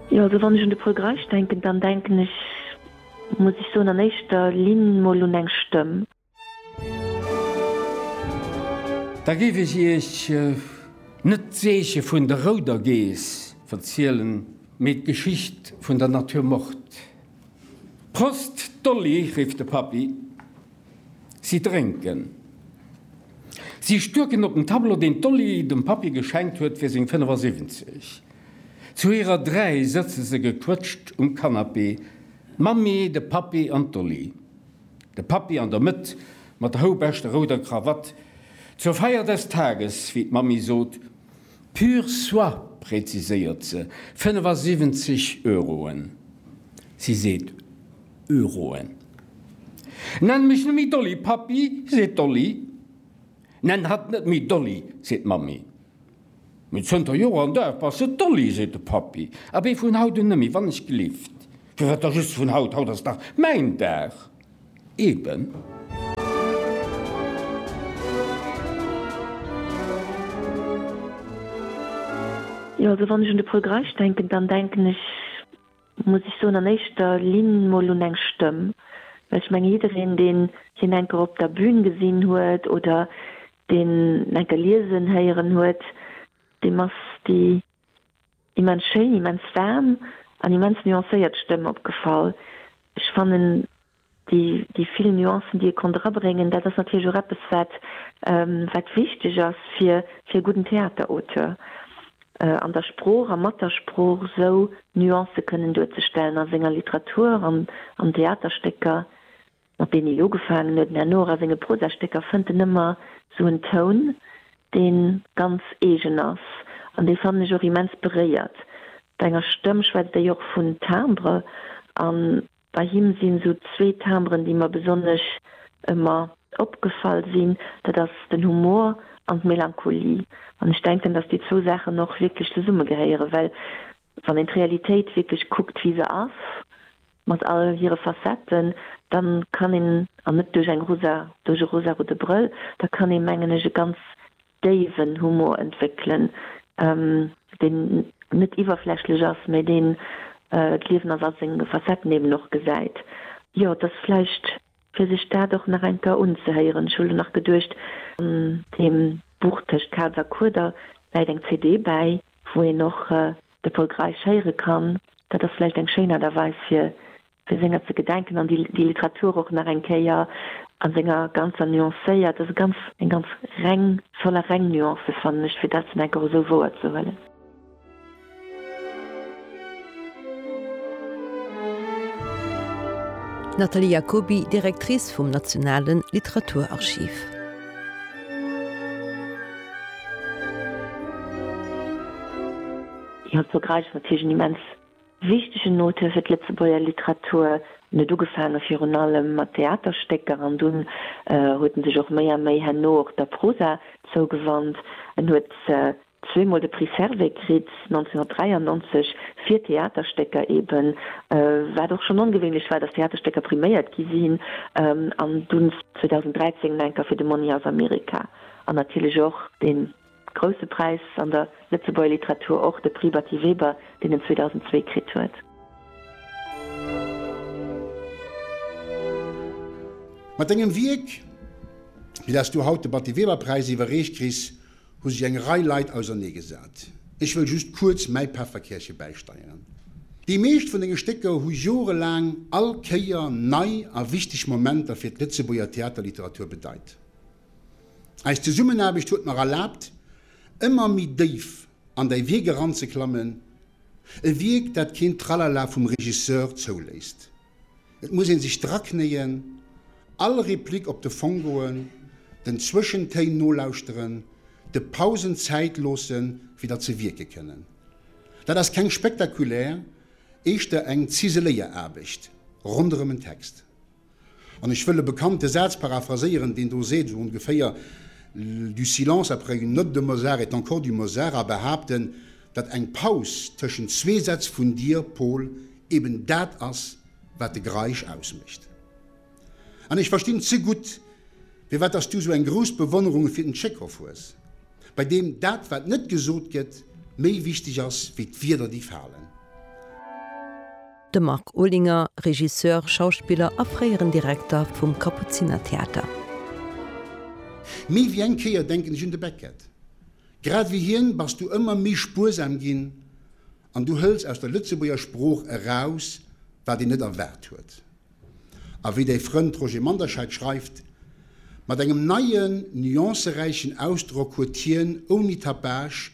Jo, also wann ech un de Paul Greisch denken, dann denken ech, muss ech soen, an éischter Linn mol un eng Stëmm. Da géif ech Iech net d'Zeeche vun der rouder Geess verzielen, mee d'Geschicht vun der Natur Mort. Prost Dolly! rifft de Pappi. Si drénken. Si stuerken op den Tableau, deen d'Dolly dem Pappi geschenkt huet fir seng 75. Zu hirer dräi sëtze se gequëtscht um Canapé, d'Mammi, de Pappi an d'Dolly. De Pappi an der Mëtt mat der houbeschter rouder Krawatt. Zur Feier des Tages, wéi d'Mammi sot. Pur soie, präziséiert se, 75 Euroen. Si seet. Euroen. Nenn mech net méi Dolly, Pappi, seet d'Dolly. Nenn hatt net méi Dolly, seet d'Mammi. Mee zënter Joer an Dag bass de Dolly, seet de Pappi. Abee vun haut un net méi, wann ech gelift. Firwat da just vun haut? Haut ass dach mäin Dag. Eben. Jo, also wann ech un de Paul Greisch denken, dann denken ech. muss ech soen, an éischter Linn mol un eng Stëmm, well ech mengen, jiddereen, deen hien eng Kéier op der Bün gesinn huet oder deen en eng Kéier liesen héieren huet, deem ass déi immens schéin, immens waarm an immens nuancéiert Stëmm opgefall. Ech fannen, Déi vill Nuancen, déi ee konnt erabréngen, dat ass natierlech och eppes, wat wichteg ass fir e gudden Theaterauteur, an der Sprooch a mat der Sprooch esou Nuancë kënnen duerzestellen a senger Literatur, an Theaterstécker, mat deenen hie jo ugefaangen huet, mä herno och a senge Prosastécker fënnt en ëmmer esou en Toun, dee ganz eegen ass an dee, fannen ech, och immens beréiert. Bei enger Stëmm schwätzt ee jo och vun Timbre an Bei him sinn esou zwee Timbren, déi mer besonnesch ëmmer opgefall sinn, dat ass den Humor an d'Melancholie. An ech denken, dass déi zwou Saachen och wierklech zesumme gehéieren, well wann een d'Realitéit wierklech kuckt, wéi se ass, mat all hire Facetten, da kann een, an net duerch eng rosa, duerch e rosarote Brëll, da kann ee mengen ech e ganz déiwen Humor entwéckelen, deen net iwwerflächlech ass, mä deen d'Liewen als all seng Facetten eben och gesäit. Jo, et ass vläicht fir sech dat och nach eng Kéier unzehéieren. Ech hu lo nach geduecht, an deem Buch Tëscht Kaz a Kueder läit eng CD bäi, wou een och de Pol Greisch héiere kann. Dat ass vläicht eng schéin Aart a Weis, fir Fir senger ze gedenken an déi Literatur och nach eng Kéier a senger ganzer nuancéiert, also ganz eng ganz reng, voller reng Nuancen, fannen ech, fir dat dann enk och esou wouer ze huelen. D'Nathalie Jacoby, Directrice vum Nationale Literaturarchiv. Jo, d'Vergräiche mat Tisch en immens. Wichtegen Note fir d'Lëtzebuerger Literatur. En huet ugefaange virun allem mat Theaterstécker an dunn huet en sech och méi a méi herno och der Prosa zougewannt. En huet zweemol de Prix Servais kritt, 1993 fir Theaterstécker eben, wat och schonn ongewéinlech war, datt Theaterstécker priméiert gi sinn, an dunn 2013 nach eng Kéier fir de Mony'er of America an natierlech och den. Grousse Präis an der Lëtzebuerger Literatur, och de Prix Batty Weber, deen en 2002 kritt huet. Mat engem Wierk, fir dat s du haut de Batty Weber Präis iwwerreecht kriss, hu sech eng Rei Leit ausernee gesat. Ech wëll just kuerz mäi Päfferkärche bäisteieren. Déi meescht vun denge Stécker hu jorelaang all Kéier nei a wichteg Momenter fir d'Lëtzebuerger Theaterliteratur bedeit. Eis Zesummenaarbecht huet mer erlaabt, ëmmer méi déif an däi Wierk eranzeklammen, e Wierk, dat keen Tralala vum Regisseur zouléisst. Et muss ee sech draknéien, all Replik op de Fong goen, den Zwëschentéin nolauschteren, de Pausen Zäit loosse fir datt se wierke kënnen. Dat ass keng spektakulär, éischter eng ziseléier Aarbecht ronderëm en Text. An ech wëll e bekannte Saz paraphraséieren, deen do seet, esou ongeféier, Du silence après une note de Mozart est encore du Mozart, a behaapten, datt eng Paus tëschent zwee Sätz vun dir, Paul, eben dat ass, wat de Greisch ausmécht. An ech verstinn ze gutt, firwat dass du sou eng grouss Bewonnerung fir den Tschekhov hues, bei deem dat, wat net gesot gëtt, méi wichteg ass wéi d'Wierder, déi falen. De Marc Olinger, Regisseur, Schauspiller a fréieren Direkter vum Kapuzinertheater. Méi wéi eng Kéier denken ech un de Beckett. Grad wéi hien bass du ëmmer méi spuersam ginn an du hëls aus der Lëtzebuerger Sprooch eraus, wat een net erwaart huet. A wéi däi Frënd Roger Manderscheid schreift, Mat engem neien, nuanceräichen Ausdrock huet hien, ouni Tapage,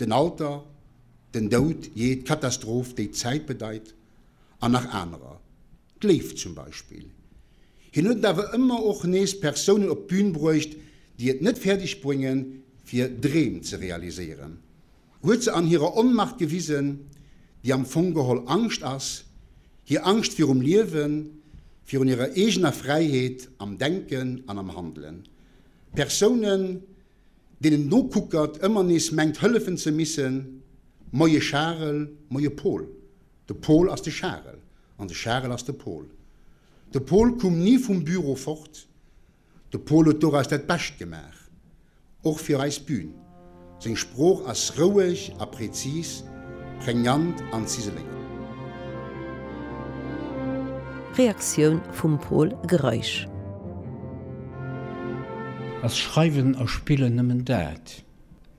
den Alter, den Doud, jee, d'Katastroph, déi d'Zäit bedeit, an nach anerer, d'Léift zum Beispill. Hien huet awer ëmmer och nees Persounen op d'Bün bruecht, déi et net fäerdeg brénge fir Dreem ze realiséieren, huet se an hirer Onmacht gewisen, déi am Fong geholl Angscht ass, hir Angscht virum Liewen, virun hirer eegener Fräiheet am Denken an am Handelen. Persounen. deen en nokuckert, ëmmer nees mengt hëllefen ze missen, Moie Charel, moie Pol, de Pol ass de Charel an de Charel ass de Pol. De Pol koum ni vum Büro fort, de Pol huet doraus dat Bescht gemaach, och fir eis Bün. Seng Sprooch ass roueg a präzis. Prégnant an Ziseléiert. Reaktioun vum Pol Greisch. Ass Schreiwen a Spillen nëmmen dat?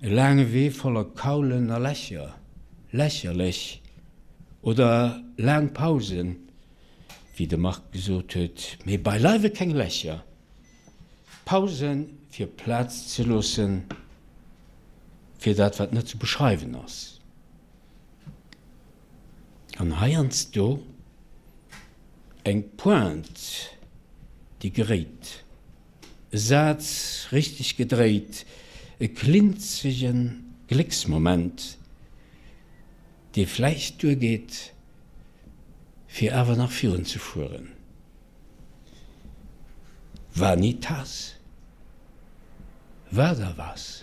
E laange Wee voller Kaulen a Lächer, lächerlech? Oder laang Pausen, wéi de Marc gesot huet, mee beileiwe keng Lächer? Pausen, fir Plaz ze loossen fir dat, wat net ze beschreiwen ass. An heiansdo eng Pointe, déi geréit, e Saz richteg gedréit, e klinzege Glécksmoment, dee vläicht duergeet, fir awer nach virunzefueren. Vanitas? Wat a was?